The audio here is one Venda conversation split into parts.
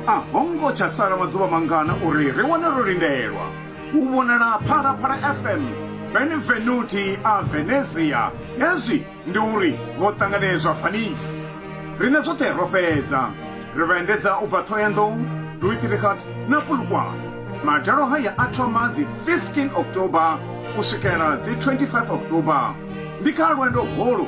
a ho ngo tsha sala maḓuvha mangana uri ri wane ro lindelwa u vhonala phalaphala fm benevenuti a venezia hezwi ndi uri vho ṱanganedzwa fanisi rine zwoṱhe ro fhedza ri vha endedza u bva ṱhoyandou duitirikhat na pulukwane madalo haya a thoma dzi 15 october u swikela dzi 25 october ndi kha lwendo holu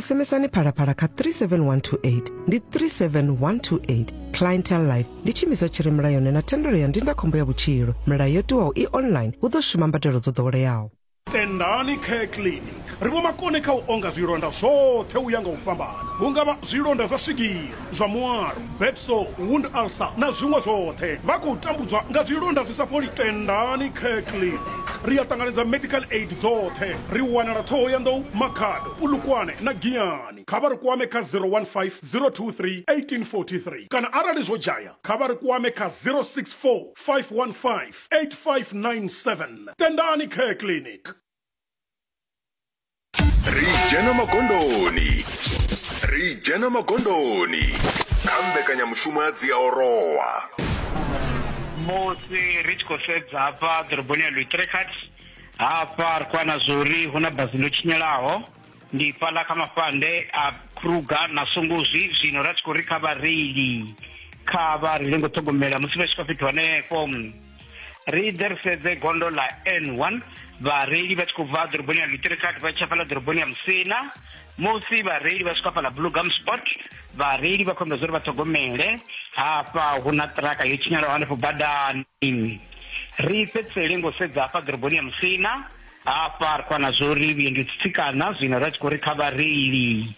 SMSani phalaphala kha 37128 ndi 37128 clientele life ndi tshiimiswa tshi re mulayoni na thendelo ya ndindakhombo ya vhutshilo milayo yo tiwaho i online hu ḓo shuma mbadelo dzo ḓoweleaho tendani care clinic ri vho makone kha u onga zwilonda zwoṱhe u ya nga u fhambana hu nga vha zwilonda zwa swigiri zwa muwalo, bed sore, wound ulcer na zwiṅwe zwoṱhe. Vha khou tambudzwa nga zwilonda zwi sa fholi. Tendani Kirkley. Ri a ṱanganedza medical aid dzoṱhe. Ri wanala Thohoyandou, Makhado, Polokwane na Giyani. Kha vha ri kwame kha 015 023 1843 kana arali zwo dzhaya kha vha ri kwame kha 064 515 8597. Tendani Care Clinic. ri dzhena magondoni ri dzhena magondoni kha mbekanyamushumo ya dziaorowa musi ri tshi khou sedza hafha ḓoroboni ya luitrekat hafha ri khou ana zwa uri hu na bazi ḽo tshinyalaho ndi fhaḽa kha mafhande a kruger na songozwi zwino ra tshi khou ri kha vhareili kha vha reile ngo ṱhogomela musi vha tshi kha fhethu hanefho ri ḓe ri sedze gondo ḽa n one vhareili vha tshi khou bva ḓoroboni ya lutirikati vha tsha fhaḽa ḓoroboni ya musina musi vhareili vha swika fhaḽa bluegum sport vhareili vha khombedza uri vha ṱhogomele hafha hu na ṱiraka yo tshinyalaho hanefho badani ri fhedzisele ngo sedza hafha ḓoroboni ya musina hafha ri khou wana zwo uri vhuendi tsitsikana zwino ra tshi khou ri kha vhareili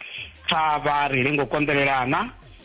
pfa vha reile ngo konḓelelana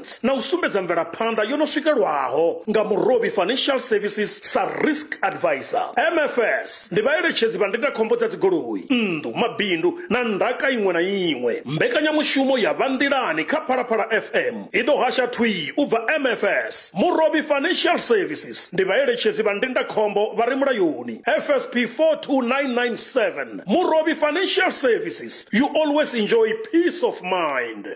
Finance na u sumbedza mvelaphanḓa yo no swikelwaho nga Murovhi Financial Services sa Risk Advisor. MFS ndi vhaeletshedzi vha ndindakhombo dza dzigoloi, nnḓu, mabindu na ndaka iṅwe na iṅwe. Mbekanyamushumo ya Vha Nḓilani kha Phalaphala FM i ḓo hasha thwii u bva MFS. Murovhi Financial Services ndi vhaeletshedzi vha ndindakhombo vha re mulayoni, FSP 42997. Murovhi Financial Services, you always enjoy peace of mind.